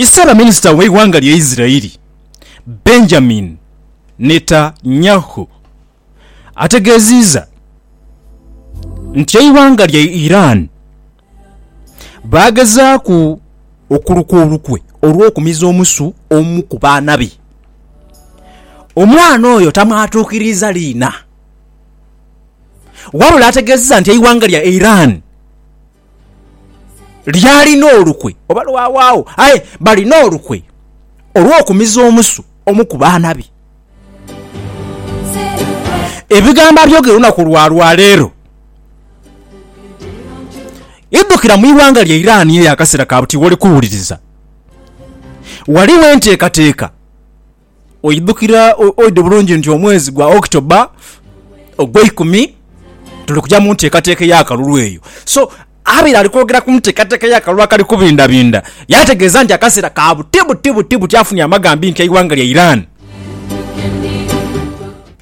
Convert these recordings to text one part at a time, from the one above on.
Ssaabaminisita w'eighanga lya Isiraeli, Benjamin Netanyahu ategeeziiza nti eighanga lya Iran baagezaaku okuluka olukwe olw'okumiza omusu omu ku baana be, omwana oyo tamwatuukiriiza liina wabula ategeezezza nti eighanga lya Iran, lyalina olukwe oba lwawaagho, aye balina olukwe olw'okumiza omusu omu ku baana be. Ebigambo abyogera olunaku lwa lwaleero idhukira mu ighanga lya Iran eyo akaseera ka buti woli kuwuliriza ghaligho enteekateeka. Oidhukira oidhi bulungi nti omwezi gwa October ogweikumi tuli kuja mu nteekateeka ey'akalulu eyo. So abaire ali kwogera ku nteekateeka y'akalulu akali kubindabinda yaategeeza nti akaseera ka buti buti buti buti afunye amagambinkya eighanga lya Iran.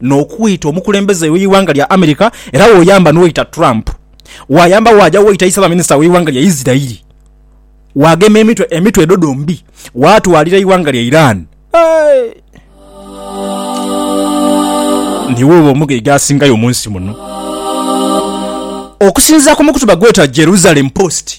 n'okwita omukulembeze w'eighanga lya America era woyamba n'oita Trump, waayamba waaja woita Isabaminisita w'eighanga lya Isirairi, waagema emitwe emitwe edho dhombi, waatwalira eighanga lya Iran. Niiwe oba omugaiga asingayo mu nsi muno. Okusinziira ku mukutuba gweeta Jerusalem Post,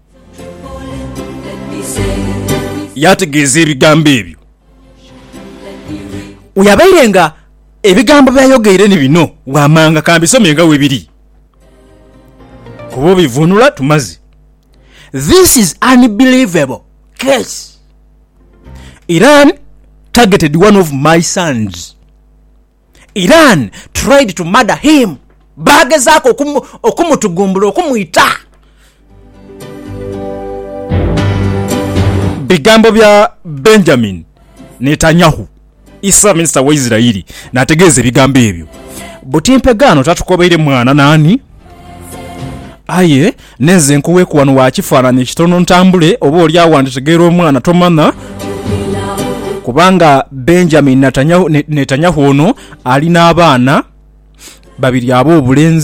Yaategeeza ebigambo ebyo. Oyo abaire nga ebigambo by'ayogeire ni bino waamanga ka mbisome nga bwe biri, kuba obivuunula tumaze. This is unbelievable case. Iran targeted one of my sons. Iran tried to murder him, baagezaaku okumutugumbula, okumwita. Bigambo bya Benjamin Netanyahu, Isra minisita wa Isiraeli, n'ategeeza ebigambo ebyo. Buti mpegaano tatukobaire mwana naani? Aye nenze nkuweku wano wa kifanhanhi ekitono ntambule, oba oli agho wanditegeera omwana tomanha. Kubanga Benjamin Netanyahu ono ali n'abaana babiri ab'obulenzi.